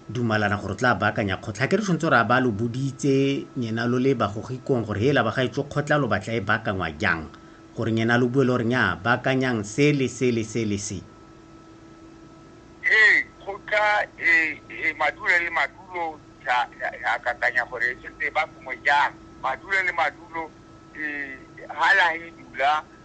dumalana gore o tla baakanya kgotla. Ga ke re tshwanetse gore a ba lo boditse nyena lo le bagogikong gore hela ba gaetsho kgotla lo batla e baakangwa jang, gore nyena lo bue le gore nyaa baakanyang se le se le se le se. Ee, kgotla e e madulo le madulo ya ya kakanya gore e tshwanetse e baakangwe jang. Madulo le madulo e ha la he dula.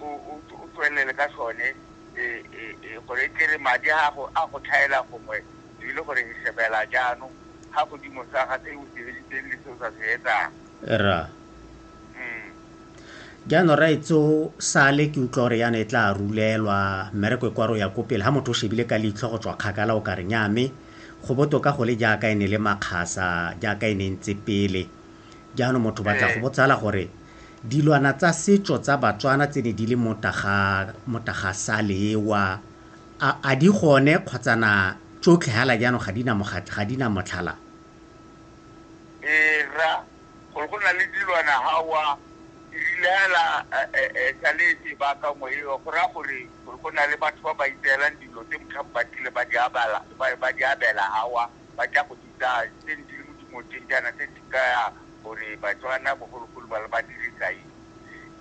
o tswelele ka sone gore e tlere madi a gago a go tlhaela gongwe e le gore e shebela jaanong ga godimo sa ga se o se editseng le se o sa se etsang ra mm. jaanong raetso sale ke utlwa gore yana e tla rulelwa mmereko e kwaro ya ko pele ga motho o shebile ka leitlho go tswa kgakala o ka re nyame go botoka go le jaaka e ne le makgasa jaaka e ne ntse pele Jaanong motho ba tla go botsala gore dilwana tsa setso tsa Batswana tse ne di le mo Tagasalewa a di gone kgotsa na tsotlhe hala jaanong ga di na mogatla, ga di na motlhala? Ee, rra, gore go na le dilwana hawa di rile hela sa le sebaka mo eo go raya gore go na le batho ba ba itseelang dilo tse motlhang ba tlile ba di abela hawa. ba tla go bitsa tse ne di le mo dimoteng jaana tse di kaya gore Batswana bogologolo ba le ba dirisa eng.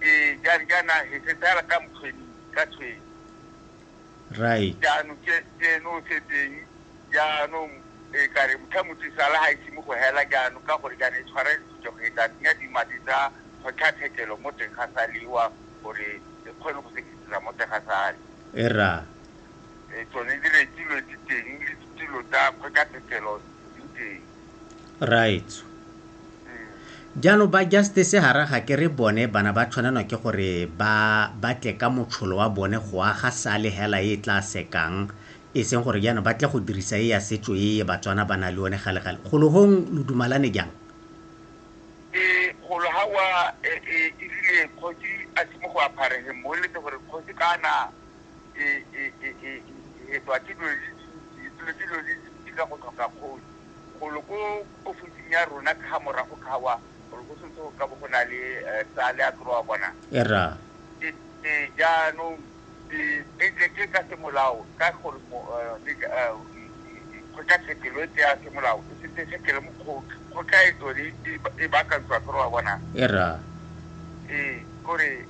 Ee, jang jaana he se tsaya ka mokgweni ka tshweng. Right. Jaanong ke eno o setseng jaanong e ka re motha motse sala ga ise mo go hela jaanong ka gore jaana e tshwara ditsotso go e tla tsenya dimadi tsa kgotlatshekelo mo teng ga salewa gore e kgone go sekisisa mo teng ga sale. Era. e, tsone diretilo di teng le ditilo tsa kgotlatshekelo di teng raitso mm. jaanong ba justice ga raga ke re bone bana ba tshwanelwa ke gore ba batle ka motsholo wa bone go aga sale hela e tla sekang e seng gore jaanong ba tle go dirisa e ya setso e batswana ba na le one galegale golohong lo dumalane jang e golo ha wa e, e, e rile kgosi a simo go apharege mo letse gore kgosi kana e, e, e, e, e, e hetwa ke dilo di dintsi dilo ke dilo di dintsi ka go tlhoka kgoni golo ko ofising ya rona ka ga morago kgawa gore go sentse go ka bo go na le eh, tsa le a tloa bona era ke ke jaanong ke ke- ke- ke ka semolao ka gore mo- eh, le ka- eh, kgotlatshekelo e tseya semolao e setse e sekele mokgotla kgotla e tsone e- e baakantswa kry wa bona era ee kore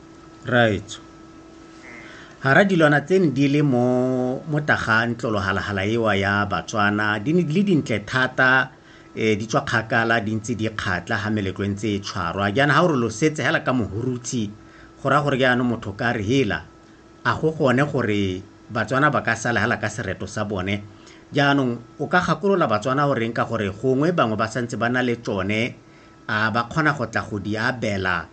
Raetsho. Hara dilwana tse ne di le mo mo taga ntlolohalhala ewa ya Batswana di ne di le dintle thata eh, di tswa kgakala di ntse di kgatla ha meletlo e ntse e tshwarwa jaana ha o re lo setse hela ka mohurutshe go raya gore jaanong motho ka re hela a go gone gore Batswana ba ka sala hela ka sereto sa bone jaanong o ka gakolola Batswana o reng ka gore gongwe bangwe ba santse ba na le tsone a ba kgona go tla go di abela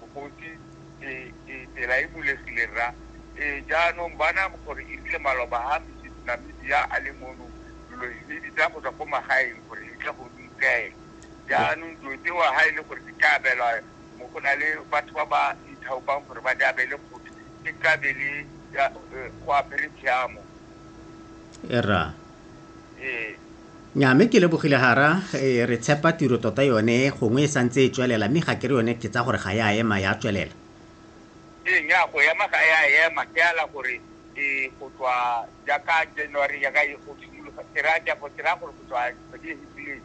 Mokgotsi, Ee, ee, tsela e bulegile, rra. Ee, jaanong bona gore e rile maloba a Mrs. Namibia a le mono, lo lo himedi tsa go tswa ko magaeng gore le tle go di tseye. Jaanong dilo tseo ha e le gore di ka abelwa mo go na le batho ba ba ithaopang gore ba di abele kgotsi, e tla be le go apere tshiamo. Rra, nya mme ke lebogile gara re tshepa tiro tota yone gongwe e santse e tswelela mme ga ke re yone ke tsa gore ga ya ema ya tswelela ee nya go ema ga ya ema ke ala gore e go tswa jaaka january yaka e go simologa ke raya jago ke raya gore go tswa kgwedi e fitileng